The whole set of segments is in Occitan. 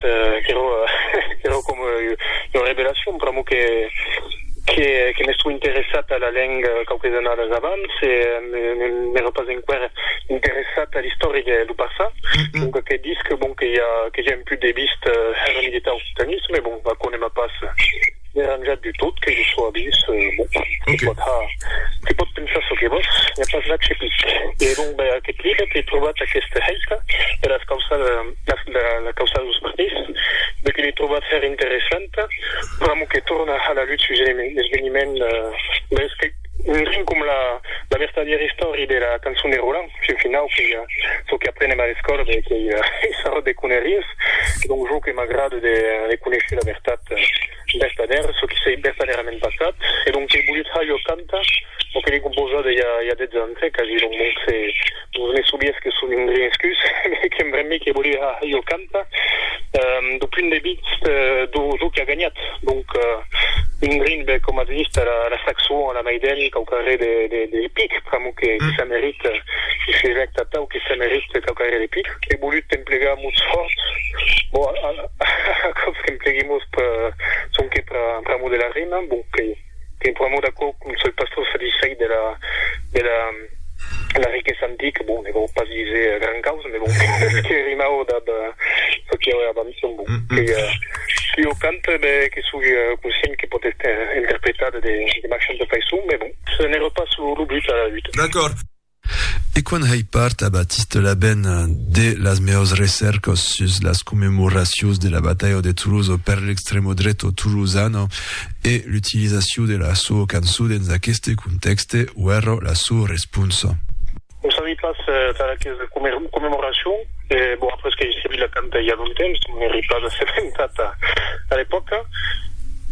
Qu'èra coma ua revelacion pr'amor que m'estó interessat a la lenga quauques annadas abans e n'èra pas enqüèra interessat a l'istòria dau Barça. Donca que disc bon que i a que ja èm pus de vist èra militar au Soutanists, mès bon, aquò ne m'a pas deranjat du tot que jo sò a vist. Bon, tu pòt ha, tu pòt pensar çò que vòs, i a pas là que pic. E donc, ben, aquest libre qu'è trobat aquesta hèita, e las causas, las. dera la causa dos partits, de que l'ai trobat hèr interessanta, pr'amor que torna a la lutz sus un esveniment mès que un rin com la la vertadièra istòria de la cançon de Roland, fin finau que ja çò que aprenem a l'escòla de qu'ei un sarròt de conèries, e donc jo que m'agrada de conéisher la vertat. Vertadèr, çò qui s'ei vertadèrament passat, e donc qu'ei volut ha jo cantar, o que l'ei composada ja ja dètz ans, eh, quasi, donc donc se vos ne sobies que son un grin escus, me que embrembi qu'ei volut ha jo cantar, do punt de vist do do qui a ganhat, donc un grin, ben, coma as dist, a la a la Saxo, a la Maiden, quauqua re de de de pic, pr'amor que que se merite, si se jècta atau, que se merite quauqua re de pic. Ei volut emplegar mots fòrts, bon, a a. Aquò's qu'empleguèmos sonque pr'amor de la rima, bon, que qu'ei pr'amor d'aquò qu'un sol pastor satisfèit de la de la de la riquesa antica, bon, ne vau pas díser gran causa, me bon, que rimau dab çò que i aué abans, son bon, qu'ei qui o canta, e ben, que soi conscient que pòt èster interpretat de marchants de faiçon, me bon, ce n'èra pas lo but a la luta. D'acòrd. E quan hèi part a Batiste Laben de las meaus recèrcos sus las commemoracious de la batalha de Toloso per l'extremo dreto tolosano e l'utilizaciou de la sou cançou dens aqueste contèxte, uèrro la sou responsa. Non sabi pas tar aques commemoracious, e bon, après qu'èi seguit la canta i a longtemps, non èri pas assementat a l'epòca.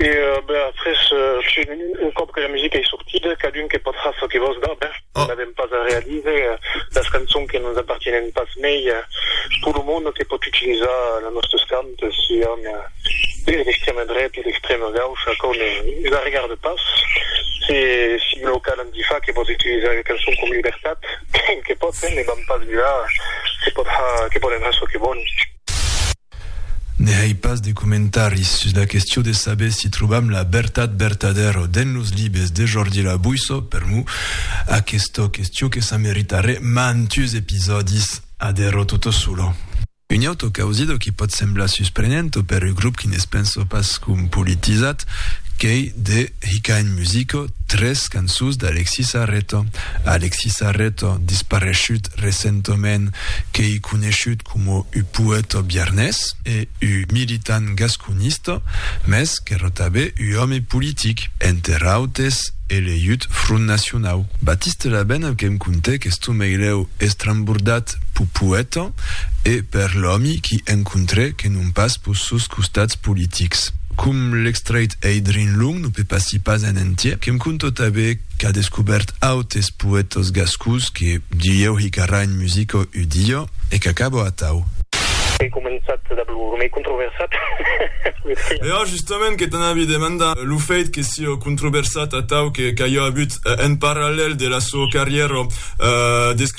E ben, après, un còp que la musica ei sortida, cadun que pòt far çò que vòl, dab, eh! Non avèm pas a realize las cançons que nos apartienen pas mei pur lo monde que pòt utilizar las nòstes cantes, sián de l'extrèma dreta o d'extrèma gaucha, aquò ne nos arregarde pas. Se sigue lo cas, l'anti fa que pòt utilizar las cançons coma libertat, que pòt, ne vam pas vilar, que pòt har, que pòden har çò que vòlon. Ne hèi pas de comentaris sus la question de saber si trobam la vertat vertadèra o dens los libes de Jordi Labuisso, per mo, aquesta question que s'a meritarè mantus episòdis a dero toto solo. Un auto causido qui pòt semblar susprenent o per un grop qui ne's pensa pas com politizat qu'ei de. Hikain Musico, tres cançons d'Alexis Arreto. Alexis Arreto, dispareishut recentoment, qu'ei coneishut coma u poèto biarnés e u militant gasconista, mès qu'èra tabé u òme politic, enter autes eleut Front Nacionau. Baptiste Labène que'm contèc, estomèilèu estrembordat, respèct pau poèta e per l'òmi qui encontrè que non pas pos sos costats politics. Com l'extreit ei drin long, no pepassi pas en entier, que'm conto tanben qu'a descobèrt autes poètas gascons que dilhèu hi qu'arrà en musica ua dia e qu'acaba atau. Ei començat dab lo remei controversat, puèi que. Era justament que t'anavi demandar, lo fèit que siá controversat atau que qu'aja avut en parallèl de la soa carrièra d'escriptor,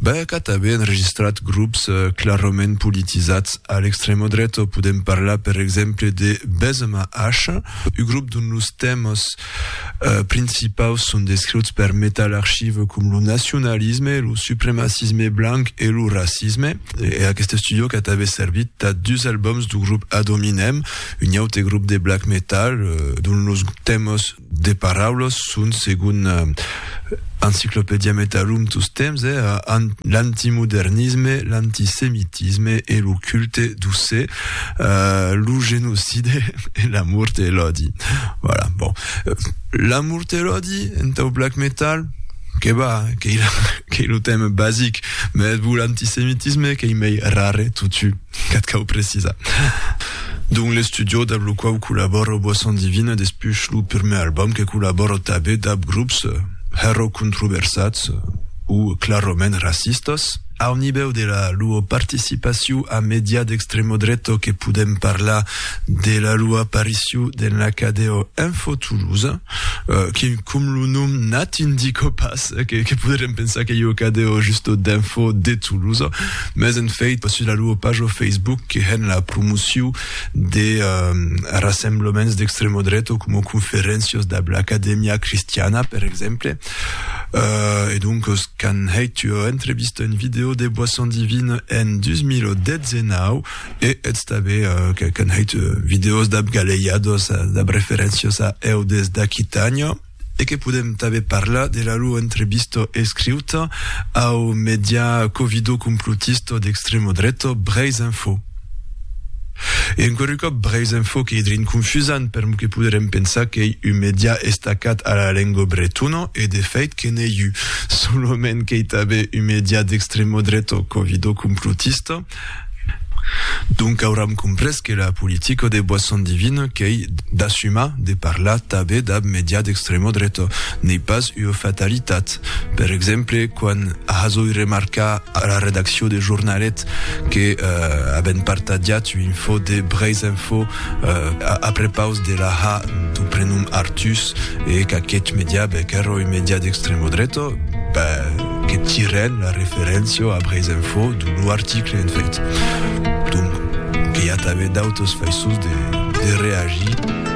Ben, qu'a tanben enregistrat grops clarament politisats a l'extremo dreto. Podem parlar, per exemple, de Benzema H, un grop dont los tèmas principaus son descriuts per Metal Archive com lo nacionalisme, lo supremacisme blanc e lo racisme. E aqueste studio qu'a tanben servit tà dus albums dau grop Ad Hominem, un aute grop de black metal dont los tèmas de paraulas son, segon Encyclopædia Metarum tos temps, eh, l'antimodernisme, l'antisemitisme e lo culte do se, uh, lo genocide e la mort e l'odi. Voilà, bon. La mort e l'odi, entau black metal, que va, que il, que il lo thème basic, mais vous l'antisemitisme, que il mei rare, tutu. Qu'ath cau precisar. Dont l'estudío dab lo quau collabòro Boisson Divine despuish lo pirmèr albòm que collabòro tabé dab grops hèro controversats o claromènt racistas. Au nivèu de la loa participaciu a medià d'extremo dreto que podem parlar de la loa apariciu den l'Acadeo Info Toulouse, que com lo nom n'ath indico pas que podrem pensar qu'ei o Acadeo justo d'Info de Toulouse, Mès en fèit, pas sus la lor pajo Facebook que hèn la promociu de rassemblaments d'extremo dreto coma conferéncios dab l'Academia Cristiana, per exemple. E doncos, qu'an hèit ua entrevista en video de Boisson Divine en 2019, e eths tanben qu'an hèit videos dab galejados, dab referéncios a eu des d'Aquitània. e que podem tanben parlar de la lor entrevista escriuta au medià covido-complotista d'extrema dreta Breizh Info. E enqüèri còp, Breizh Info qu'ei drin confusant permor que poderem pensar qu'ei un medià estacat a la lengua bretona e de fèit que n'ei un, solament qu'ei tanben un medià d'extrema dreta covido-complotista, Donc auram comprés que la politica de Boisson Divine qu'ei d'assumar de parlar tanben dab media d'extremo dreta n'ei pas ua fatalitat. Per exemple, quan hazoi remarcar a la redaccion de Jornalet que aben partatjat ua info de Breisinfo a prepaus de la ha du prenom Artús e qu'aqueth media bec era ua media d'extremo dreta, Que tirèn la referéncia a Breisinfo d'un lo article en fèit. Donc, que i a tanben d'autres faiçons de reagir.